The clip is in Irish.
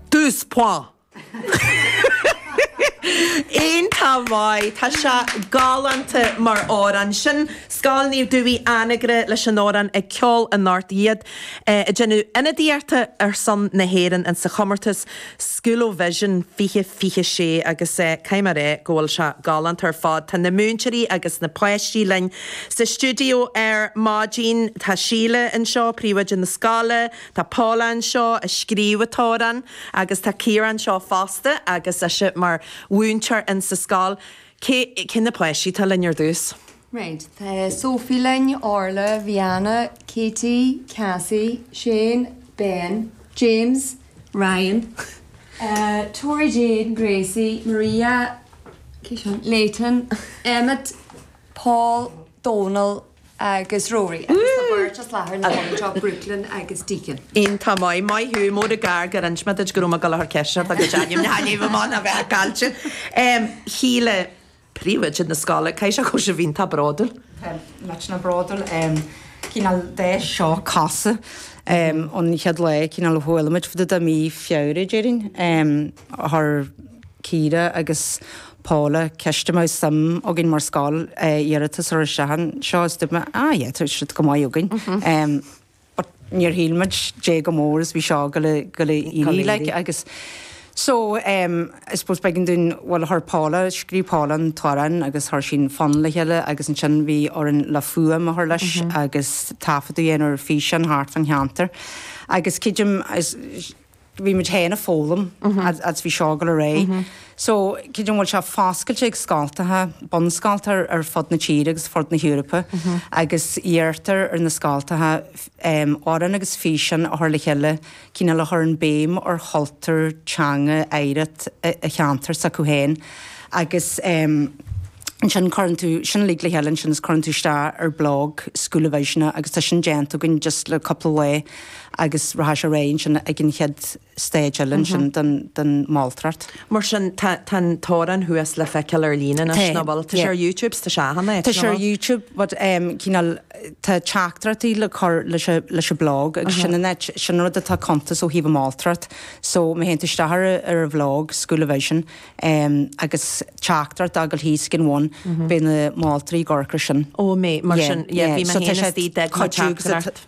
Douze points! An-mhaith. Tá sé galánta mar amhrán. Sin Scoil Naomh Dubhthaigh Anagaire leis an amhrán Ag Ceol in Ard Iad ag déanamh ionadaíochta ar son na hÉireann in sa chomórtas Schoolovision 2026 agus caithfidh mé rá go bhfuil sé galánta ar fad. Tá na múinteoirí agus na páistí linn sa stiúideo ar maidin. Tá Síle anseo, príomhoide na scoile. Tá Paula anseo a scríobh an t-amhrán agus tá Ciara anseo fosta agus ise mar mhúinteoir in sa scoil. Cé na páistí atá linn ar dtús? Right, tá Sophie linn, Orla, Rihanna, Katie, Cassie, Shane, Ben, James, Ryan, Tori Jane, Gracie, Maria, cé sin? Leighton, Emmet, Paul, Dónal, agus Rory, agus an bheirt as láthair na háite seo, Brooklyn agus Deacon. Iontach maith, maith thú. Murab é gur inse mé duit go raibh mé ag dul a chur ceisteanna ort agus ainm na hainmhí i mbanna a bheith a caillte. Em, Shíle, príomhoide na scoile, caithfidh sé go bhfuil sibh iontach bródúil. Tá muid an-bhródúil, em, cineál de seo, cosúil, em, ón chéad lá, cineál a chuala muid fá dtaobh de mí Feabhra, déarfainn. Em. Chuir Ciara agus Paula ceist an mbeadh suim againn mar scoil iarratas a chur isteach air seo is dúirt mé, ah yeah, tá siad go maith againn. But níor shíl muid caidé chomh mór is bhí seo ag gabháil a éirí like agus so I suppose b'éigean dúinn, bhuel chuir Paula, scríobh Paula an t-amhrán agus chuir sí an fonn le chéile agus ansin bhí orainn an fhuaim a chur leis agus taifeadadh a dhéanamh ar fhíseán thart fan cheantar agus cineál bhí muid féin ag foghlaim agus bhí seo ag gabháil ar aghaidh. So cibé ar bith tá sé foscailte ag scoltacha, bunscoltacha ar fud na tíre agus fud na hEorpa agus iarrtar ar na scoltacha amhrán agus físean a chur le chéile cineál a chuireann béim ar chultúr, teanga, oidhreacht an cheantair s'acu féin agus ansin cuireann tú sin uilig le chéile ansin is cuireann tú isteach ar blog Schoolovision agus tá sin déanta againn just le cúpla lá agus rachaidh sé ar aghaidh ansin ag an chéad stage eile ansin den mholtóireacht. Mar sin, tá an t-amhrán thuas le feiceáil ar líne anois, nach bhfuil? Tá sé ar Youtube, tá sé ann, nach bhfuil? Tá sé ar Youtube, but cineál, tá teachtaireachtaí le cur leis an blog, agus sin an áit, sin an rud atá ag cuntas ó thaobh an mholtóireacht, so má théann tú isteach ar an bhlog, Schoolovision, agus teachtaireacht a fhágáil thíos ag an bhun, beidh na moltóirí ag amharc air sin. Ó, amazing, mar sin, yeah, bhí mé féin istigh, d'fhág mé teachtaireacht.